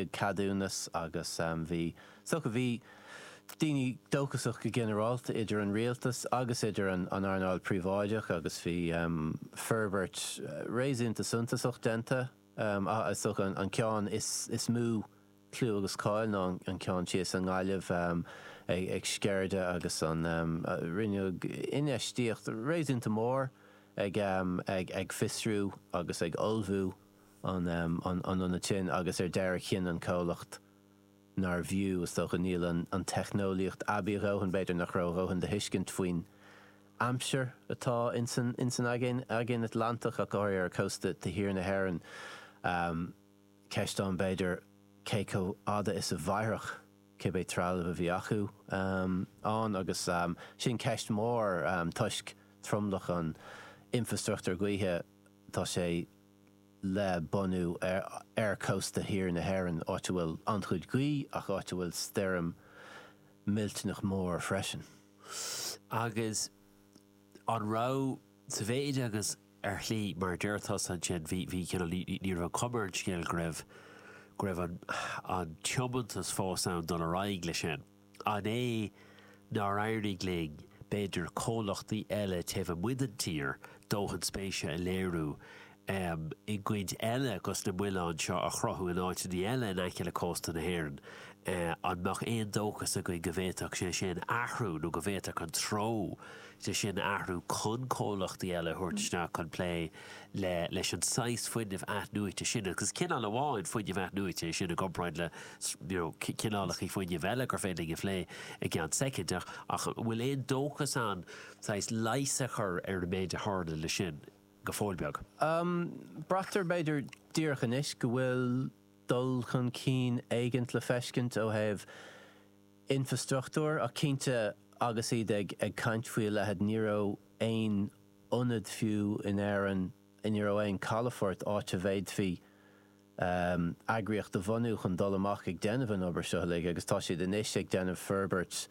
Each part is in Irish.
ceadúnas agus bhí soc, bhí daoine dóchasach go ginearálta, idir an rialtas agus idir an earnáil phríobháideach agus bhí forbairt réasúnta suntasach déanta ach is dócha an ceann is mó clú agus cáil ná an ceann thíos i nGaillimh ag Sceirde agus an rinneadh infheistíocht réasúnta mór ag fiosrú agus ag ullmhú an ionaid sin agus ar deireadh chinn an comhlacht nárbh fhiú, is dócha, níl an teicneolaíocht aibí a dhóthain, b'fhéidir nach raibh a dhóthain de thuiscint faoin aimsir atá ins an Aigéan Atlantach ach go háirithe ar chósta thiar na hÉireann. Ceist ann b'fhéidir cé chomh fhada is a mhairfeadh cibé trealamh a bhí acu ann agus sin ceist mhór toisc tromlach an infreastruchtúir gaoithe tá sé le bunú ar chósta thiar na hÉireann, áit a bhfuil an-chuid gaoithe ach áit a bhfuil stoirm mhillteanach mhór freisin. Agus an raibh, sa mhéid agus, ar shlí, mar a deir tusa ansin, bhí, bhí cineál, ní, ní raibh an chuma ar an scéal go raibh, go raibh an, an tiomantas fós ann dul ar aghaidh leis sin. An é nár éirigh linn, b'fhéidir, comhlachtaí eile taobh amuigh den tír dóthain spéise a léiriú i gcinn eile agus na muilinn seo a chruthú in áiteanna eile in aice le cósta na hÉireann? An mbeadh aon dóchas againn go bhféadfadh sé sin athrú nó go bhféadfadh an treo sin athrú chun comhlachtaí eile a thabhairt isteach chun plé le leis an saghas fuinnimh athnuaite sin agus is cineál amháin fuinnimh athnuaite é sin i gcomparáid le you know cineálacha fuinnimh eile gur féidir linn a phlé i gceann soicind ach ach an bhfuil aon dóchas ann saghas leigheas a chur ar an méid a tharla le sin go fóill beag? Braitear b'fhéidir díreach anois go bhfuil dul chun cinn éigint le feiscint ó thaobh infreastruchtúir ach cinnte agus iad ag ag caint faoi a leithid ní raibh aon ionad fiú in Éirinn ní raibh aon chalafort áit a bhféadfaí eagraíocht a bhunú chun dul amach ag déanamh an obair seo uilig agus tá siad anois ag déanamh forbairt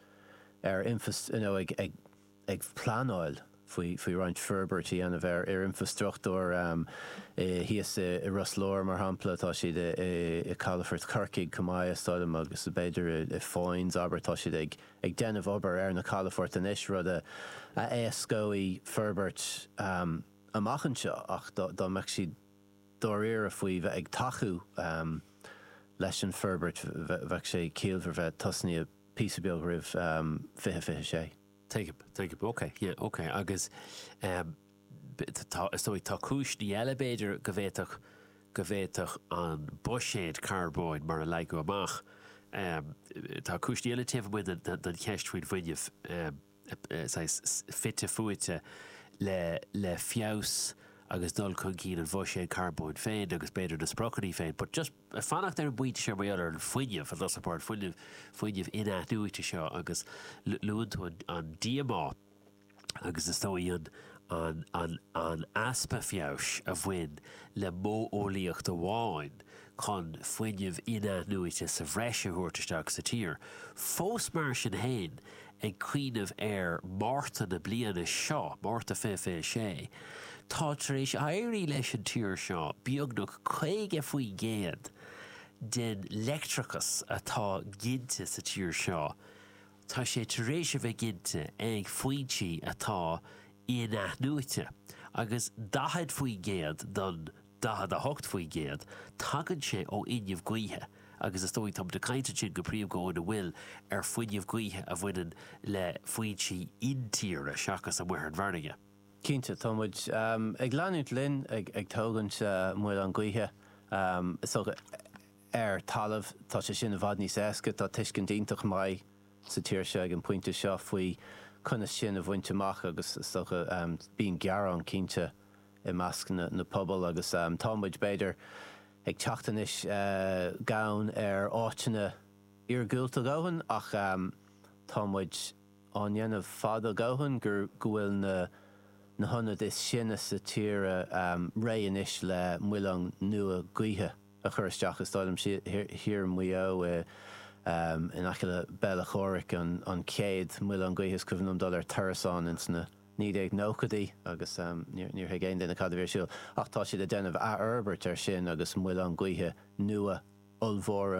ar you know ag ag pleanáil faoi faoi roinnt forbairt a dhéanamh ar ar infreastruchtúr i thíos i i Ros Láir mar shampla tá siad i i i gcalafort Chorcaí chomh maith is dóigh liom agus b'fhéidir i i Foynes abair tá siad ag ag déanamh obair ar na calafoirt anois, rud a éascóidh forbairt amach anseo ach dá mbeadh siad dáiríre faoi bheith ag tacú leis an bhforbairt bheadh sé ciallmhar bheith tosnaíthe píosa beag roimh 2026. Tuigim, tuigim. Ok, yeah, ok agus. Is dóigh, tá cúiseanna eile, b'fhéidir, go bhféadfadh go bhféadfadh an buiséad carbóin mar a leagadh amach, tá cúiseanna eile taobh amuigh den cheist faoin bhfuinneamh, saghas fite fuaite le le feabhas agus dul chun cinn an bhuiséid carbóin féin agus b'fhéidir na spriocanna féin. But just ag fanacht ar an bpointe seo mar gheall ar an fuinneamh, an bhfuil a fhios agat, mar an fuinneamh in-athnuaite seo agus luann tú an díomá, agus is dóigh an easpa feabhais a bhain le modheolaíocht amháin chun fuinneamh in-athnuaite sa bhreis a thabhairt isteach sa tír, fós mar sin féin ag cuimhneamh ar Mhárta na bliana seo, Márta 2026, tá tar éis éirí leis an tír seo beagnach 50% den leictreachas atá ginte sa tír seo a tá sé tar éis a bheith ginte ag foinsí atá in-athnuaite, agus 40% den 48%, tagann sé ó fhuinneamh gaoithe, agus is dóigh, tá muid ag caint ansin go príomha go hiondúil ar fuinneamh gaoithe a bhaineann le foinsí intíre seachas amuigh ar an bhfarraige. Cinnte, tá muid ag leanúint linn ag tógaint muileann gaoithe, is dócha, ar talamh. Tá sé sin i bhfad níos éasca, tá tuiscint iontach maith sa tír seo ag an bpointe seo faoi conas sin a bhaint amach agus is dócha bíonn gearán cinnte i measc na pobail agus tá muid b'fhéidir ag teacht anois gann ar áiteanna iargúlta a dhóthain ach tá muid á ndéanamh fad a dhóthain gur go bhfuil na na hionaid is sine sa tíre réidh anois le muileann nua gaoithe. a chur isteach is dóigh liomsa thiar i Maigh Eo in aice le Béal Átha Chomhraic, an chéad mhuileann gaoithe is cuimhin liom dul ar turas ann ins na 1990idí agus níor thuig aon duine cad a bhí ar siúl. Ach tá siad ag déanamh athfhorbairt air sin agus muileann gaoithe nua ollmhóra